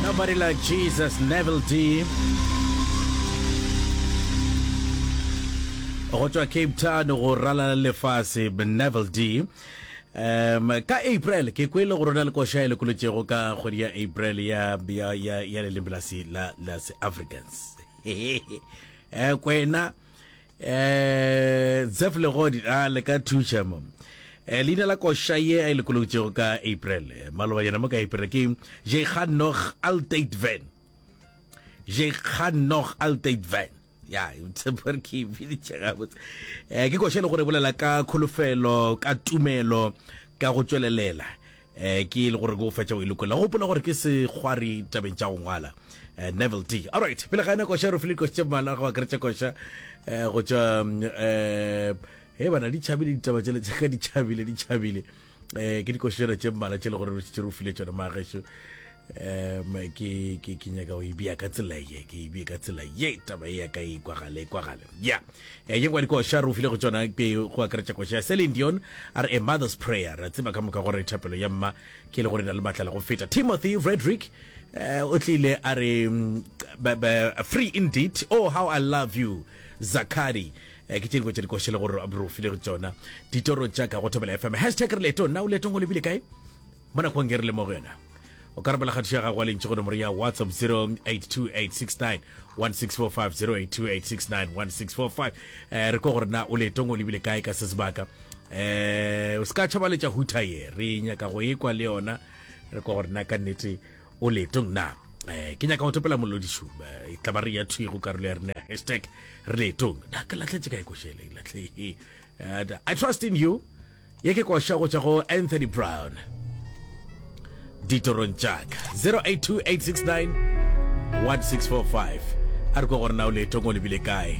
Nobody like Jesus, Neville D. go tswa cape town go ralala lefase neville d um ka april ke kwele go rona le koša e lekolotšego ka kgwedi ya april ya, ya, ya, ya leleme la, la, la se africans e kwena Eh, Zef Legodi, a le ka thuša mo. Eh, leina la koša ye a e lokologitšego ka April, eh, maloba yena mo ka April ke Jekgan Nog Altate Van. Jekgan Nog Altate Van. Ya, tsepore ke biditše gabotse. Eh, ke koša e le gore e bolela ka kholofelo, ka tumelo, ka go tšwelelela. Eh, ke le gore ke go fetša o e lokolela. Gopola gore ke sekgwari tabeng tša go ngwala. Eh, Neville D. Alright, pele ga ena koša re file koša tše mmala go akaretša koša eh, go tšwa mm, eh, he bana di tšhabile ditaba tšele tša ka di tšhabile di tšhabile eh, ke dikošana tše mmala tše le gore re šetše re o file tšona maagešo um ke ke ke nyaka o ebea ka tsela ye ke ebea ka tsela ye taba e ya ka e kwagale e kwagale ya e eh, yengwa dikoša re o file go tsona pe go akaretša koša ya celine dion a re a mother's prayer ra tseba ka moka gore thapelo ya mma ke e le gore na le matla le go feta timothy frederick eh, o tlile a re mm, free indeed oh how i love you zakari Eh, ke tše dingwe tša dikoše le gore re ofile go tsona ditoro tša ka go thobela fm hashtag re leto nna o letong o lebile kae Mo nakong e re le mo go yona, o ka rapela kgatišo ya gago wa lentši go nomoro ya WhatsApp 0828691645, 0828691645. Eh, re ko gore na o letong o lebile kae ka se sebaka. Eh, o se ka tšhabaletša huta ye, re nyaka go ekwa le yona, re ko gore na ka nnete o letong na. Eh, ke nyaka go topela molodišu eh, e tlaba re ya thwi go karolo ya rena ya hashtag re letong na ke latletse ka ekošele latlhe eh, I trust in you Ye ke koša go tšwa go Anthony Brown ditorong tša ka. 0828691645 a re kwa gore na o leetong o lebile kae.